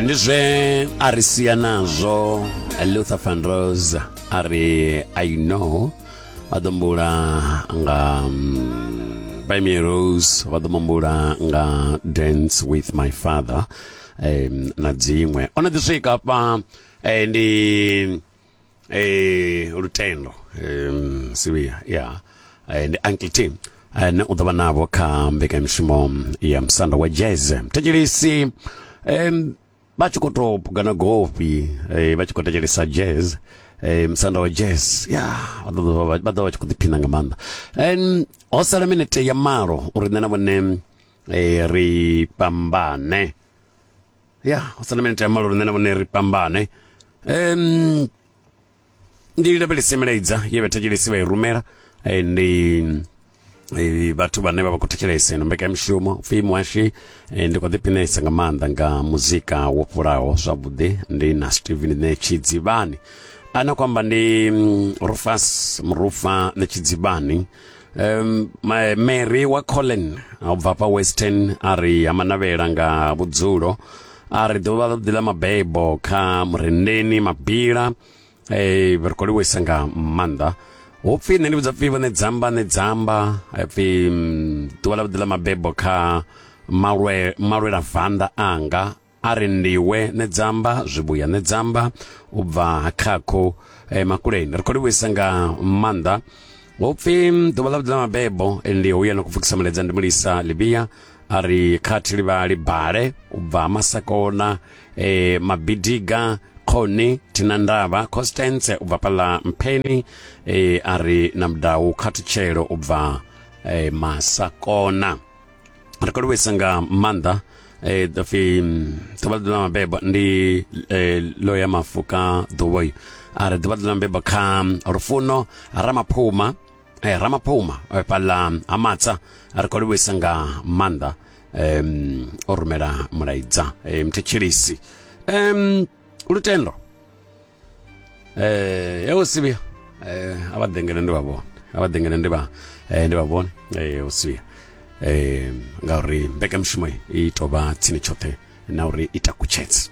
ndi zwe a ri sia nazwo luther van rose a ri i know vha ḓo mbula nga Bamie mm, Rose vha ḓo mambula nga Dance with my father um, na dziṅwe o no ḓi swika hafha eh, ndi eh lutendo um sivia yeah and uncle tim eh, ne u ḓo vha navho kha mbekanyamushumo ya musanda wa jazz thetshelesi em vha tshi khou tou pugana gofi eh, vha tshi khou thetshelesa jazz eh, musanda wa jazz ya vha ḓo vha- vha ḓo vha tshi khou ḓiphina nga maanḓa em ho sala minete ya malo uri nṋe na vhone eh, ri fhambane ya u sala minete ya malo lune na vhone ri fhambane um ndi lavhelese milaedza ye vhathetshelesi vha i rumela eh, ndi eh, vhathu vhane vha vha khou thetshelesa ino mbekanyamushumo upfhi muhashi eh, ndi khou ḓiphinesa nga maanḓa nga muzika wo fhulaho zwavhuḓi ndi na steven ne tshidzivhani ana khou amba ndi mm, rufas murufa ne tshidzivhani Um, Mary wa Colin a bva pa Western a ri ha manavhela nga vhudzulo a ri ḓuvha ḽa ḓi ḽa mabebo kha murendeni mabila eh ri khou livhuisa nga maanḓa ho pfhi nṋe ndi vhudza pfhi vhone dzamba ne dzamba pfhi mm, ḓuvha ḽa ḓi ḽa mabebo kha malwe malwela vanda anga a ri ndiwe nedzamba zwivhuya nedzamba u bva khakho eh, makuleni ri khou livhuisa nga maanḓa upfi ḓuvha ḽa vhuḓila mabebo eh, ndi uya na kupfukisa muledza ndi mulisa livia a ri khathi livhali bale u bva masakona eh, mabidiga khoni thina ndavha constance u bva pala mpheni eh, a ri na mudau khathutshelo u bva eh, masakona ri khou livhuisa nga maanḓa eh pfi ḓuvha ḽa mabebo ndi eh, lo ya mafu ka ḓuvha yi a ri ḓuvha ḽa mabebo kha rufuno ramaphuma eh ramaphuma eh, fhaḽa ha matsa ri khou livhuisa nga maanḓa um o rumela mulaidza eh, muthetshelisi um lutendo eh yo sibia eh abadengene ndi vhavhona abadengene ndi vha eh ndi vhavhona eh usibia eh ngauri mbekanyamushumo i tovha tsini tshoṱhe na uri i takutshedze